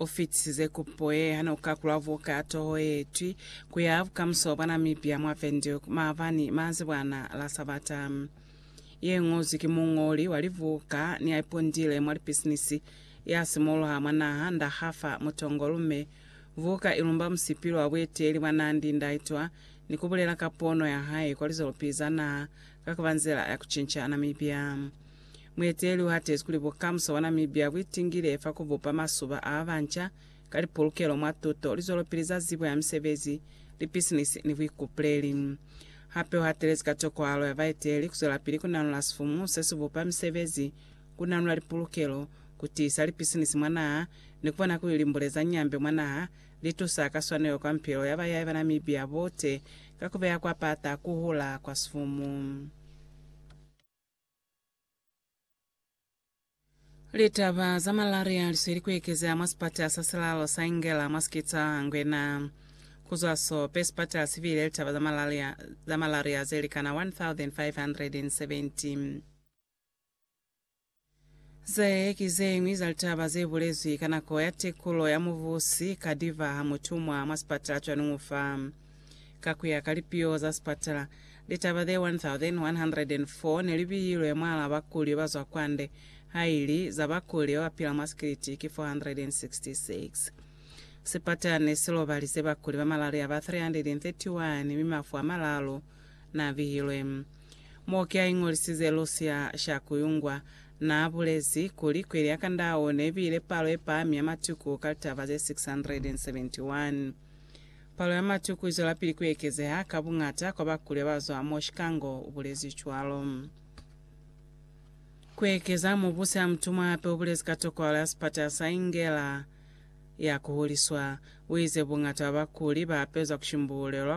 U fitisize kupo ye ha ne u kakulwa buka ya toho ye twi ku ya Bukamuso bwa Namibia mwa Windhoek maabani manzibwana la Sabata. Ye ñozwi ki muñoli wa libuka ni ya ipundile mwa lipisinisi ya simuluha mwa naha, Nda Hafa Mutongo Lume. Buka i lumba musipili wa bueteeli bwa Nandi Ndaitwah ni ku bulela ka pono ya hae kwa lizolopi za naha ka ku ba nzila ya ku cinca Namibia. Mueteleli u hatezi kuli bukamuso bwa Namibia bu itingile fa ku bupa masuba a ba banca ka lipolokelo mwa tuto, lizwelopili za zibo ya misebezi, lipisinisi ni buikupuleli. Hape u hatelezi ka tokohalo ya baeteli ku zwelapili ku nanula sifumu se si bupa misebezi, ku nanula lipolokelo, ku tiisa lipisinisi mwa naha, ni ku bona kuli limbule za nyambe mwa naha li tusa ka swanelo kwa mipilo ya bayai ba Namibia bote ka ku beya kwa pata ku hula kwa sifumu. Litaba za malaria lisweli kuekezea mwa sipatala sa silalo sa Ingela mwa Skitsa Ngwena. Kuzwa so, pe sipatala sibile litaba za malaria, za malaria zelikana 1,570. Ze ki ze ñwi za litaba ze bulezwi ka nako ya tekulo ya mubusi ka diva ha mutumwa mwa sipatala cwa Nung'u fa. Ka ku ya ka lipiho za sipatala, litaba ze 1,104 ne li bihilwe mwal'a bakuli ba zwa kwande, ha ili za bakuli ba ba pila mwa sikiliti ki 466. Sipatala ne si lobalize bakuli ba malaria ba 331 mi mafu a malalu na bihilwe. Mo ki a iñolisize Lucia Shakuyungwa, na bulezi kuli kweli ya Kandao ne bile palo ye pahami ya matuku ka litaba ze 671. Palo ya matuku i zwelapili ku ekezeha ka buñata kwa bakulya ba zwa mo Chikango, u bulezi cwalo. Ku ekeza mo busi ha mutumwa hape u bulezi ka tokohalo ya sipatala sa Ingela ya ku huliswa. U ize buñata bwa bakuli ba apezwa ku shimbuulelwa